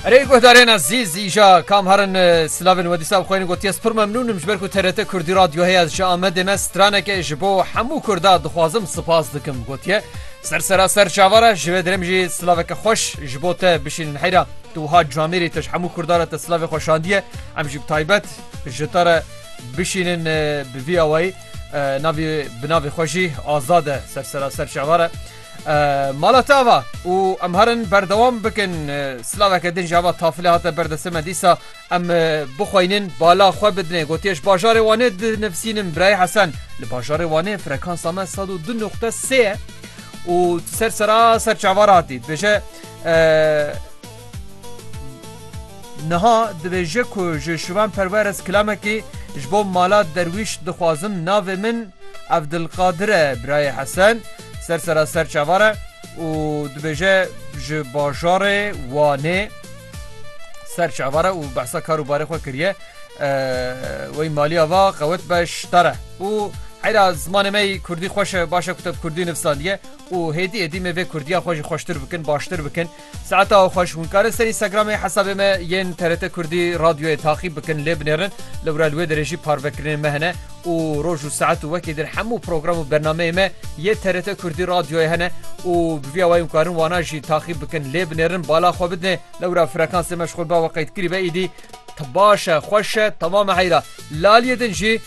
Erê guhdarên ezîz îja kam herin silavên we dîsa bixweynin gotiye spir memnûnim ji ber ku TRT Kurdî radyo heye ez ji Amedê me straneke ji bo hemû Kurda dixwazim sipas dikim gotiye ser sera ser çava re ji vê dirêm jî silaveke xweş ji bo te bişînin heyra tu wiha camêrî te ji hemû Kurda re te silavê xwe şandiye em jî bi taybet ji te re bişînin bi vî awayî navê bi navê xwe jî azad e ser sera ser çava re Mala te ava û em herin berdewam bikin silaveke din ji ava tafilê hate berdestê me dîsa em bixweynin bala xwe bidinê gotiye ji bajarê wanê dinivîsînim birayê hesen li bajarê wanê frekansa me sed û du nuqte sê ye û ser sera ser çavar hatî dibêje niha dibêje ku ji şivan perwer ez kilamekî ji bo mala derwîş dixwazim navê min evdilqadire birayê hesen Ser sera ser çavar e û dibêje ji bajarê Wanê ser çavar e û behsa kar û barê xwe kiriye. Wey maliya va qewet be ştar e û heyra zimanê me Kurdî xweş e baş e ku te bi Kurdî nivsandiye û hêdî êdî me vê Kurdiya xwe jî xweştir bikin baştir bikin. Saeta xweş hûn karin ser Instagramê hesabê me yên TRT Kurdî Radyoyê taxîb bikin lê binêrin lewra li wê derê jî parvekirinên me hene û roj û saet û wekî din hemû program û bernameyên me yê TRT Kurdî Radyoyê hene û bi vîya wayî hûn karin wana jî taxîb bikin lê binêrin bala xwe bidinê lewra frekansê me ji xwe biawe qeydkirî be îdî baş e xweş e temam e heyra laliyê din jî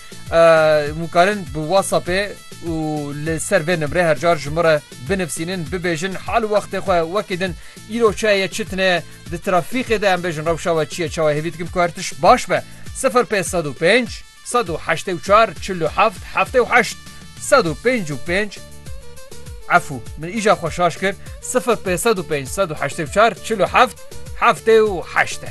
hûn karin bi whatsappê û li ser vê nimrê her car ji min re Binivsînin, bibêjin hal û wextê xwe wekî din îro çi heye çi tine ye, di trafîqê de em bêjin rewşa we çi ye çawa hêvî dikim ku her tişt baş be, sifir pênc sed û pênc, sed û heştê û çar, çil û heft, heftê û heşt, sed û pênc û pênc, efû min îja xwe şaş kir, sifir pênc sed û pênc, sed û heştê û çar, çil û heft, heftê û heşt e.